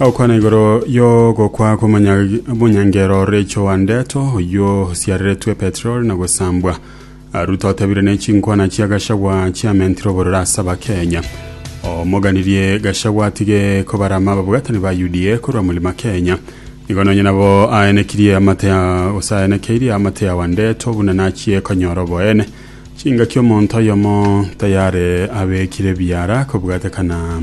Agokwana igoro y'ogokwa kw'omonyangeero ore Joandeto, oyio osiareretwe petroli na gosambwa. Aru totabire ne chinkwana chia Gachagua chiamentire obororo ase Abakenya. Omoganirie Gachagua atige kobarama ababwatani ba UDA korwa Mulima Kenya. Igo nonye nabo aenekirie amate ya gose aenekeirie amate ya Wandeto buna nachie konyora oboene. Chingaki omonto oyomo tayare abekire biara kobwatekana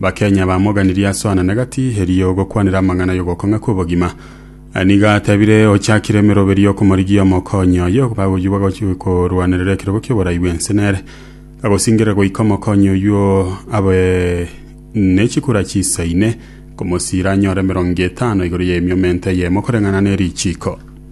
Bakenya bamoganirie asoanane gati, erio gokwanera amang'ana y'ogokong'a kw'obogima. Nigo atebire ochakire emeroberi y'okomorigia omokonyi oye bagoywa bagochi korwanerera ekerogo ki'oborai bw'ense nere. Agosingerera goika omokonyi oyio abe ne chikura chisa ine, komosiira anyore emerongo etano igoro y'emiomento eyemo koreng'ana ne richiiko.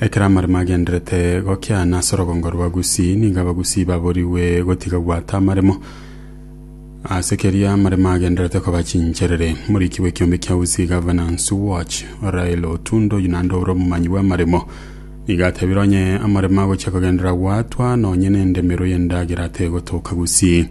Ekero amaremo agenderete gokiana ase orogongo rwa Gusii, nigo Abagusii baborigwe gotiga gwata amaremo. Ase keria amaremo agenderete koba chincherere. Moriki bw'ekiombe kia Usi Governance Watch, Rael Otundo Yunando ore omomanyi bw'amaremo, nigo atebire onye amaremo agochia kogenderera gwatwa, nonye nendemero y'endagera tegotoka Gusii.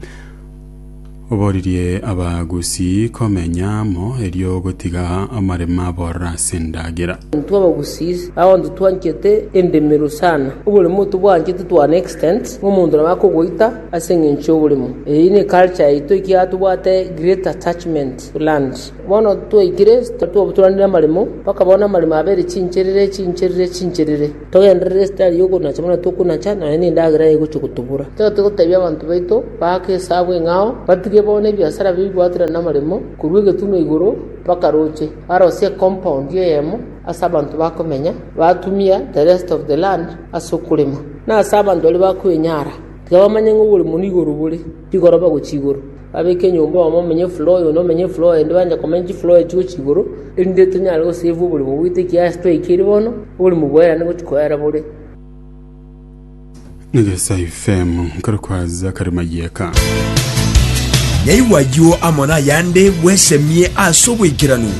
Oboririe Abagusii komenya amo, erio ogotiga amarema abororo ase endagera. Intwe Abagusii abanto twanchete endemero sana, oboremo ntobwanchete to an extent ng'a omonto nabo akogoita ase eng'encho y'oboremo. Eyio ne culture yaito ekiagera tobwate great attachment to land. Bono twaikire twabaturanire amaremo, mpaka bono amaremo abere chincherere chincherere chincherere. Togenderere esitari y'okonacha buna tokonacha, nonya nendagera egochia gotobora. Totagete gotebia abanto baito baake esabu eng'ao, batige bono ebiasara bibwatire namaremo, korwa egetunwa igoro mpaka roche, barosie ecompound eyemo ase abanto bakomenya, batumia the rest of the land ase okorema. Na ase abanto baria bakoenyara, tiga bamanye ng'a oborimo nigo bore, rigoroba gochia igoro. Babeke enyomba oyomo amenye efula oyo, onde amenye efula oyo ende, banche komenya chifula echi gochia igoro, erinde tonyare gosave oborimo bwaito ekiagera twaikire bono, oborimo bwerane gochia koera bore. Negesa FM, nkare kwaza kare mayeka. Yaigwa ayio amo nayande bwesemie ase oboikeranu.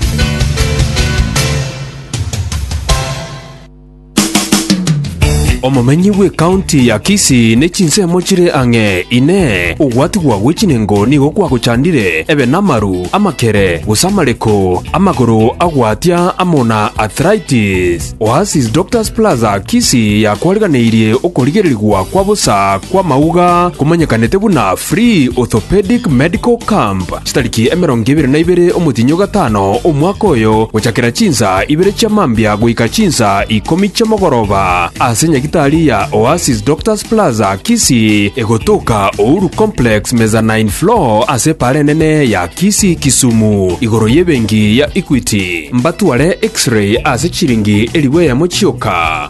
Omomenyi bw'ekaunti ya Kisii ne chinsemo chire ang'e. Inee! Ogwatigwa gwe chinengo nigo kwagochandire ebe namaru, amakere, gose amareko, amagoro agwatia amo na arthritis? Oasis Doctors Plaza Kisii yakwariganeirie okorigererigwa kwa bosa kw'amauga komanyekanete buna Free Orthopedic Medical Camp. Chitariki emerongo ebere na ibere omotienyi o gatano omwaka oyo, gochakera chinsa ibere chia mambia goika chinsa ikomi chi'omogoroba, ase nyagitari ya Oasis Doctors Plaza, Kisii, egotoka Uhuru Complex, Mezzanine Floor, ase epaara enene ya Kisii, Kisumu, igoro y'ebenki ya Equity, mbatware X-ray ase chiringi elifu eyemo chioka.